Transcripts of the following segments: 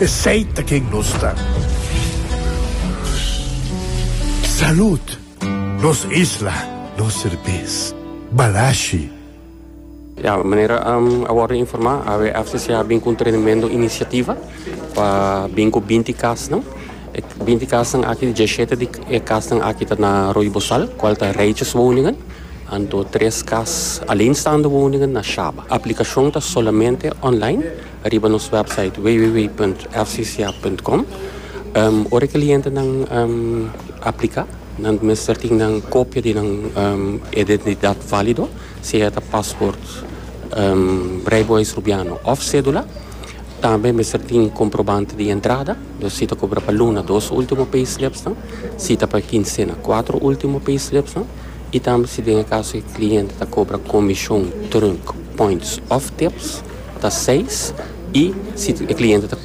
Esey ta ken nos ta. Salud! Nos isla, nos serbes. Balashi. Ya, manera a wòrdu informá, AWFCC a bin ku un trenamento inisiativa pa bin ku binti kasnan. E binti kasnan aki, djeshete di e kasnan aki ta na Arroyo Bozal, kual ta rijtjes woningen. Anto tres kas aleenstaande woningen na Shaba. Aplikashon ta solamente online. riba nos website www.fcca.com. Ora e clientenan aplica, nan mester tin nan copia di nan identidad valido, sea ta paspoort Rijbewijs Rubiano of cedula. Tambe mester tin comprobante di entrada, dus si ta cobra pa luna, dos ultimo payslepsnan, si ta pa kinsena, cuatro ultimo payslepsnan, y tambe si den e caso e cliente ta cobra comision, trunk, points of tips. ta seis i si e kliente ta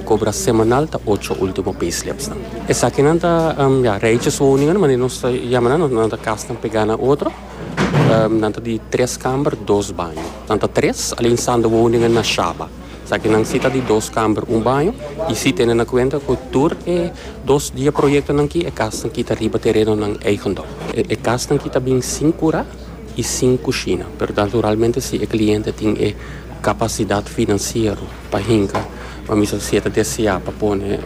kobra semanal ta ocho ultimo payslips nan. Esakinan ta ya reiches woningan manera nos ta yama nan, nan ta kasnan pegá na otro, nan ta di tres kamber dos baño, nan ta tres alinsando woningan na shaba, esaki nan si ta di dos kamber un baño i si tene na kuenta ku tur e dos dia proyektonan ki e kasnan ki ta riba terenonan eigendom. E kasnan ki ta bin sin kurá. i sin kushina, pero naturalmente si e kliente tin e kapasidat finansiero pa hinka, pamisa si e ta deseá pa pone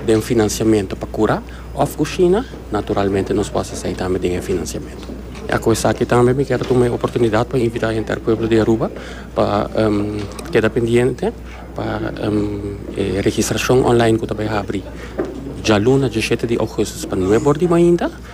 den finansiamentu pa kura òf kushina, naturalmente nos por hasi esei tambe den e finansiamentu. Ya ku esaki tambe mi kier tuma e oportunidat pa invitá henter pueblo di Aruba pa keda pendiente pa e registrashon online ku ta bai habri djaluna dishete di ougùstus pa nuebordimainta.